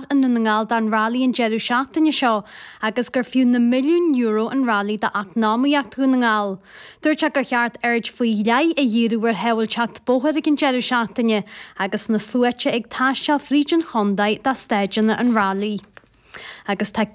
i nDún na nGall don Rally an deireadh seachtaine seo agus gur fiú na milliúin euro an Rally d'eacnamaíocht Dhún na nGall. Dúirt sé gur cheart aird faoi leith a dhíriú ar shábháilteacht bóthair ag an deireadh seachtaine agus na sluaite ag taisteal fríd an chontae do staideanna an Rally. Agus tá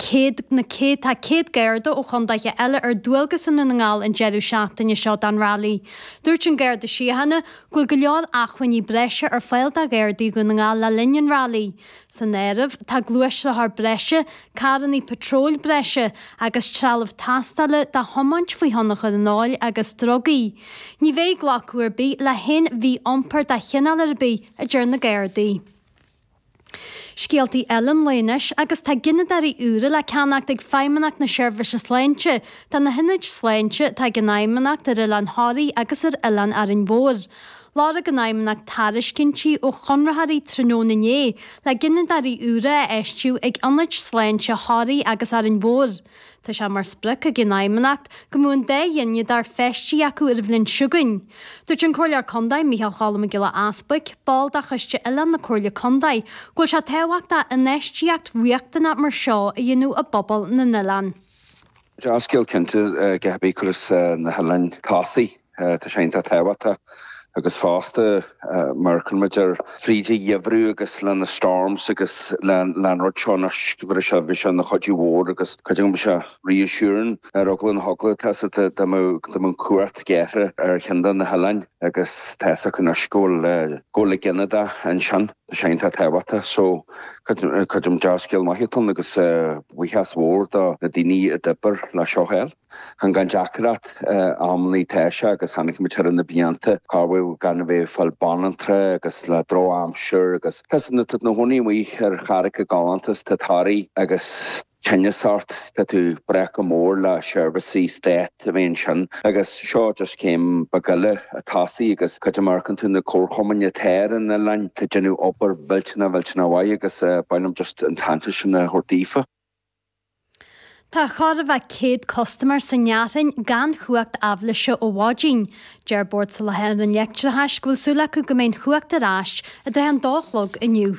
na céad tá céad Garda ó chontaetha eile ar dualgas i nDún na nGall an deireadh seachtaine seo don Rally. Dúirt an Garda Síochána go bhfuil go leor acmhainní breise ar fáil do Ghardaí Dhún na nGall le linn an Rally. San áireamh tá gluaisrothar breise, carranna patróil breise agus trealamh tástála do thiomáint faoi thionchar an óil agus drugaí. Ní bheidh glacadh ar bith le haon mhí-iompar de chineál ar bith, a deir na Gardaí. Scéaltaí eile an lae anois agus tá gineadóirí úra le ceannacht ag Feidhmeannacht na Seirbhíse Sláinte do na hionaid sláinte atá ag an Fheidhmeannacht ar Oileán Thoraí agus ar Oileán Árainn Mhór. Lorg an Fheidhmeannacht tairiscintí ó chonraitheoirí tráthnóna inné le gineadóirí úra a fheistiú ag ionaid sláinte Thoraí agus Árainn Mhór. Tá sé mar sprioc ag an Fheidhmeannacht go mbeadh an dá ghineadóir feistithe acu ar an bhliain seo chugainn. Dúirt an Comhairleoir Contae Micheál Choilm Mac Giolla Easbuic, ball de Choiste Oileán na Comhairle Contae, go bhfuil sé tábhachtach infheistíocht riachtanach mar seo a dhéanamh i bpobal na n-oileán. Dea-scéal cinnte, cibith a chuireas na hoileáin chun tosaigh, tá sé iontach tábhachtach agus fosta mar chuaigh muid fríd an gheimhreadh agus leis na storms agus leis an rud seo anois go bhfuil sé bhí sé ina chuidiú mór agus creidim go bhí sé reassuring ar go leor dóigh. Tá a fhios agat dá mbeadh power cut amuigh ar cheann de na hoileáin agus tá a fhios agat anois go bhfuil go bhfuil gineadóir ansin. Tá sé iontach tábhachtach so. Creidim dea-scéal maith anocht agus buíochas mór do na daoine a d'oibir le seo a fháil. Chan gan deacracht a mbítear agus chonaic muid thar na blianta cá bhfuil muid gan a bheith ag fáil banaltra agus le drochaimsir agus tá a fhios agat nuair atá tú i do chónaí amuigh ar charraig i gceantar mar atá Toraigh agus tinneas ort, tá tú ag brath go mór ar seirbhísí Stáit, a bheith ansin. Agus seo just céim beag eile chun tosaigh agus creidim mar gheall ar na comharchumainn atá ar an oileán, tá siad ag déanamh obair mhillteaná mhillteaná mhaith agus ba mhaith liom just an t-aitheantas sin a thabhairt daofa. Tá chóir a bheith 100 custaiméir sna Gleanntaí gan chumhacht aibhléise ó mhaidin. Deir Bord Soláthair an Leictreachais go bhfuil súil acu go mbeidh an chumhacht ar ais i dtrátha an dó a chlog inniu.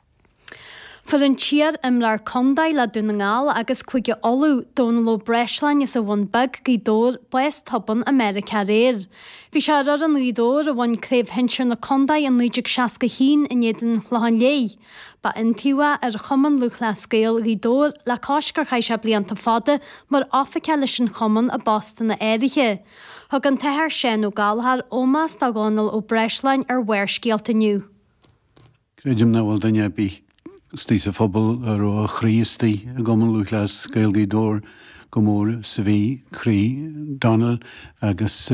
Fuair an t-iar-imreoir contae le Dún na nGall agus Cúige Uladh, Dónall Ó Breisleáin as an Bhun Bheag, Gaoth Dobhair, bás tobann i Meiriceá aréir. Bhí sé ar fhoireann Ghaoth Dobhair a bhain Craobh Shinsir na Contae i 1961 in éadan an Chlocháin Léith. Ba iontaobhaí é ar Chumann Lúthchleas Gael Ghaoth Dobhair le cois gur chaith sé blianta fada mar oifigeach leis an chumann i bpostanna áirithe. Thug an tAthair Seán Ó Gallchóir ómás do Dhónall Ó Breisleáin ar Bharrscéalta inniu. Creidim nach bhfuil duine ar bith istoigh sa phobal a raibh a chroí istoigh i gCumann Lúthchleas Gael Ghaoth Dobhair chomh mór is a bhí croí Donal agus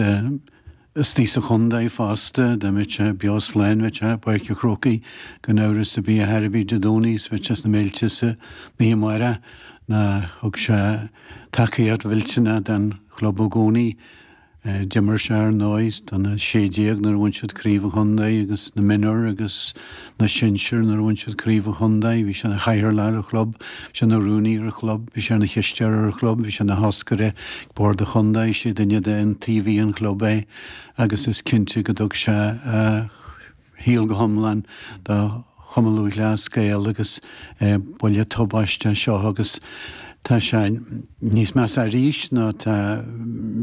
istoigh sa chondae fosta, dá mbeadh sé beo slán, bheadh sé i bPáirc a' Chrócaigh gan amhras a' bith a thairbhe Dé Domhnaigh is bheadh sé sna Méilte san oíche amárach. Ná thug sé tacaíocht mhillteanach don chlub i gcónaí. D'imir sé, ar ndóigh, do na sé déag nuair a bhain siad Craobh an Chontae agus na Minor agus na Sinsir nuair a bhain siad Craobh an Chontae. Bhí sé ina chathaoirleach ar an chlub, bhí sé ina rúnaí ar an chlub, bhí sé ina chisteoir ar an chlub, bhí sé ina thoscaire ag Bord an Chontae, is é duine d'iontaobhaithe an chlub é agus is cinnte go dtug sé a shaol go hiomlán do Chumann Lúthchleas Gael agus buille tubaisteach seo agus tá sé níos measa arís nó tá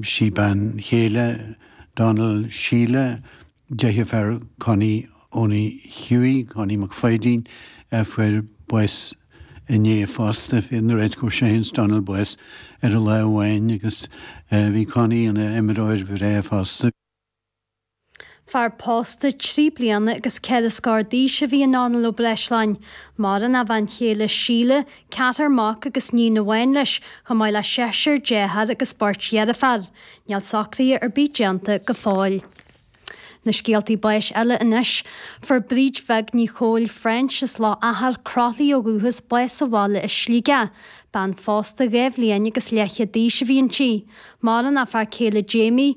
sí, bean chéile Donal, Síle, deirfiúr Connie Owenie Hughie, Connie Mac Pháidín, a fuair bás inné fosta, nuair a fuair sé féin is Donal bás ar a lá amháin agus bhí Connie ina imreoir bhreá fosta. Fear pósta trí bliana agus ceithre scór d'aois a bhí i nDomhnall Ó Breisleáin. Maireann a bhean chéile Síle, ceathrar mac agus níon amháin leis, chomh maith le seisear deartháir agus beirt dheirféar. Níl socruithe ar bith déanta go fóill. Na scéaltaí báis eile anois. Fuair Bríd Bheag Ní Chomhaill French as Loch Achair, Croithlí ó dhúchas bás sa bhaile i Sligeach. Bean phósta dhá bhliain agus leithchéad d'aois a bhí inti. Maireann a fear céile Jamie.